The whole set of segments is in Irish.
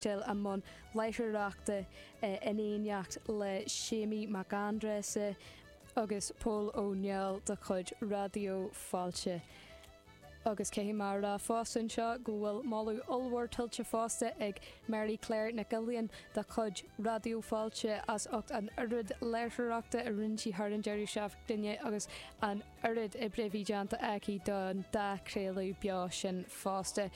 dul i mbun láithreoireachta in éineacht le Séimí Mac Aindreasa agus Pól Ó Néill de chuid Raidió Fáilte. Agus caithfidh mé a rá fosta anseo go bhfuil moladh ollmhór tuillte fosta ag Mary Claire Nic Uilíonn de chuid Raidió Fáilte as ucht an oiread láithreoireachta a rinne sí thar an deireadh seachtaine agus an oiread oibre a bhí déanta aici don dá chraoladh beo sin fosta.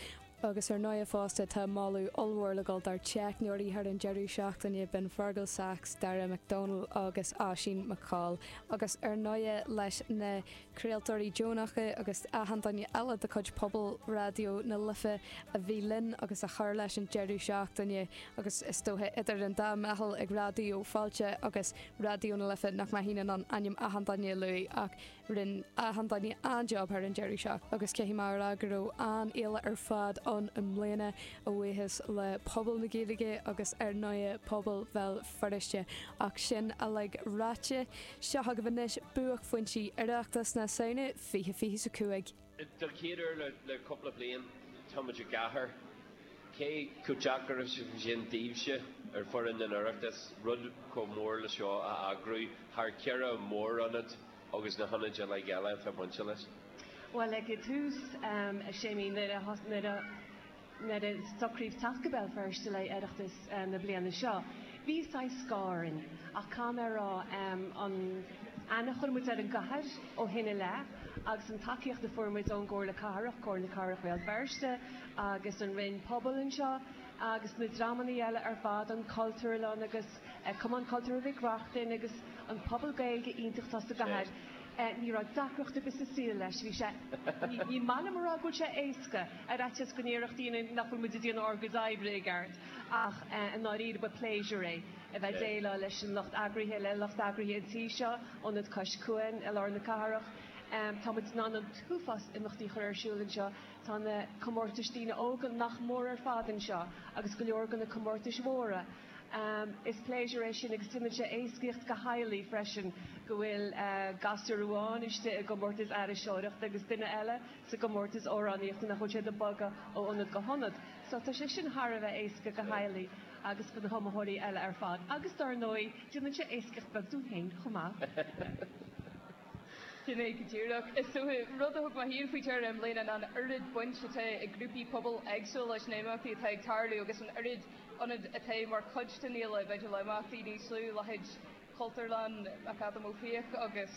Agus ar ndóighe fosta tá moladh ollmhór le dhul dár dteicneoirí thar an deireadh seachtaine, b'in Fergal Sachs, Daire McDonald agus Oisín McColl, agus ar ndóighe leis na craoltóirí deonacha agus achan duine eile de chuid pobal Raidió na Life a bhí linn agus a chuir leis an deireadh seachtaine agus is dóiche idir an dá mheitheal ag Raidió Fáilte agus Raidió na Life nach mbeinn in ann ainm achan duine a lua ach Rinne achan duine an-jab thar an deireadh seachtaine agus caithfidh mé a rá go raibh an-fhéile ar fad ann i mbliana, a bhuíochas le pobal na Gaeilge agus ar ndóigh pobal Bhéal Feirste. Ach sin uilig ráite, seo agaibh anois buaicphointí Oireachtas na Samhna 2025. Den chéad uair le cúpla bliain, táimid i gcathair, cé chomh deacair is a bhí sin daoibhse ar fhoireann an Oireachtais, rud chomh mór le seo a eagrú thar cheithre mhór-ionad agus na hionaid uilig eile atá bainte leis? Bhuel, ag tús, a Séimí, nuair a, nuair a. nuair a socraíodh teacht go Béal Feirste le Oireachtas na bliana seo, bhí saghas scáth orainn, ach caithfidh mé a rá, an aithne a chuir muid ar an gcathair ó shin i leith, agus an tacaíocht a fuair muid ón gComhairle Cathrach, Comhairle Cathrach Bhéal Feirste agus an Roinn Pobal anseo, agus na dreamannaí eile ar fad, an Chultúrlann agus. Cumann Cultúrtha Mhic Reachtain agus an pobal Gaeilge iontach atá sa gcathair, ní raibh deacracht ar bith sa saol leis. Bhí sé, ní maith liom a rá go bhfuil sé éasca, ar fhaitíos go ndéarfadh daoine nach bhfuil muid ag déanamh ár gcuid oibre i gceart, ach i ndáiríre ba pléisiúr é a bheith ag déileáil leis an lucht eagraithe, le lucht eagraithe an tí seo, Ionad Cois Cuain i lár na cathrach. Tá muid in ann an t-uafás imeachtaí a chur ar siúl anseo, tá na comórtais daoine óga nach mór ar fad anseo agus go leor de na comórtais mhóra, Is pléisiúr é sin agus déanann sé éascaíocht do theaghlaigh freisin go bhfuil gasúr amháin istigh i gcomórtas aithriseoireachta agus duine eile sa gcomórtas amhránaíochta nach bhfuil siad ag bogadh ó ionad go hionad. So tá sé sin thar a bheith éasca do theaghlaigh agus do na hiomaitheoirí eile ar fad agus dár ndóigh déanann sé éascaíocht beag dúinn féin chomh maith. Sin é go díreach. Agus rud a thug mé féin faoi deara i mbliana ná an oiread baint atá ag grúpaí pobail éagsúla leis na himeachtaí atá ag tarlú agus an oiread ionad atá mar chuid den fhéile, b'fhéidir imeachtaí níos lú leithéid Chultúrlann McAdam Ó Fiaich agus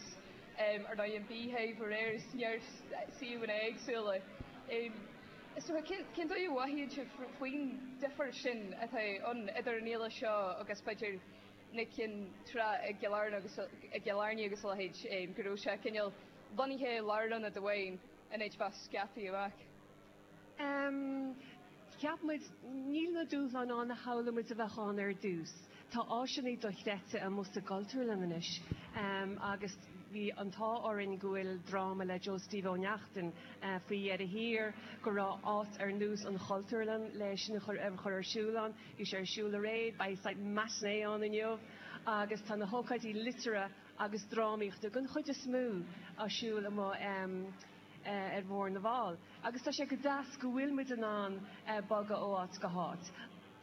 ar ndóigh an Beehive aréir, neart suíomhanna éagsúla. So cén dóigh a mhothaíonn sibh faoin difear sin atá ann idir an fhéile seo agus b'fhéidir na cinn trá i gCill Airne agus a leithéid, go raibh sé cineál bunaithe i lárionad amháin in áit bheith scaipthe amach? Ceapann muid, níl na dúshláin ann a shamhlaigh muid a bheadh ann ar dtús. Tá áiseanna dochreidte amuigh sa gCultúrlann anois agus bhí an t-ádh orainn go bhfuil dráma le Joe Steve Ó Neachtain faoi dheireadh thiar, go raibh áit ar nós an Chultúrlann le sin a chur ar siúl ann. Bhí sé ar siúl aréir, beidh matinée ann inniu agus tá na hócáidí liteartha agus drámaíochta, den chuid is mó, ar siúl amuigh. ar Bhóthar na bhFál agus tá sé go deas go bhfuil muid in ann bogadh ó áit go háit.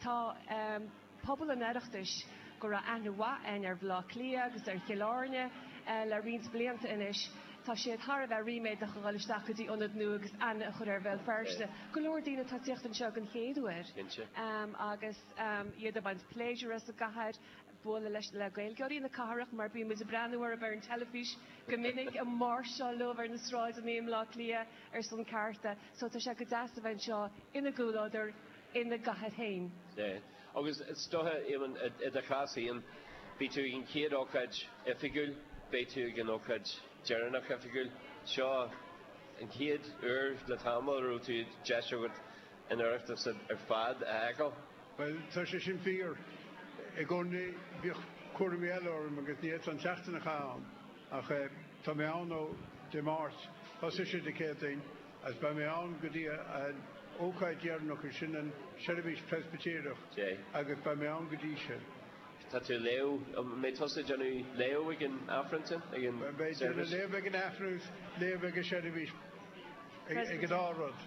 Tá pobal an Oireachtais, go raibh aithne mhaith a'inn ar Bhaile Átha Cliath agus ar Chill Airne le roinnt blianta anois, tá siad thar a bheith ríméadach a dhul isteach go dtí ionad nua agus aithne a chur ar Bhéal Feirste. Go leor daoine atá ag teacht anseo den chéad uair agus iad ag baint pléisiúir as an gcathair. bualadh leis, le Gaeilgeoirí na cathrach mar bíonn muid ag breathnú orthu ar an teilifís go minic ag máirseáil leob ar na sráideannaí i mBleá Cliath ar son cearta so tá sé go deas a bheith anseo ina gcomhluadar ina gcathair féin. Yeah. Agus is dóiche, Éamonn, i do chás féin, beidh tú ag an chéad ócáid oifigiúil, beidh tú ag an ócáid deireanach oifigiúil. Seo an chéad uair le tamall a raibh tú, deis agat an Oireachtas ar fad a fheiceáil. Bhuel, tá sé sin fíor. I gcónaí bhíodh cúraimí eile orm agus ní fhéadfá an tseachtain a chaitheamh ann. Ach tá mé ann ó Dé Máirt, thosaigh sé Dé Céadaoin, agus beidh mé ann go dtí an ócáid dheireanach, is sin an seirbhís Preispitéireach, agus beidh mé ann go dtí sin. Tá tú ag léamh, an mbeidh tusa ag déanamh léamh ag an Aifreann sin, ag an seirbhís? Beidh mé ag déanamh léamh ag an Aifreann agus léamh ag an seirbhís, ag an dá rud.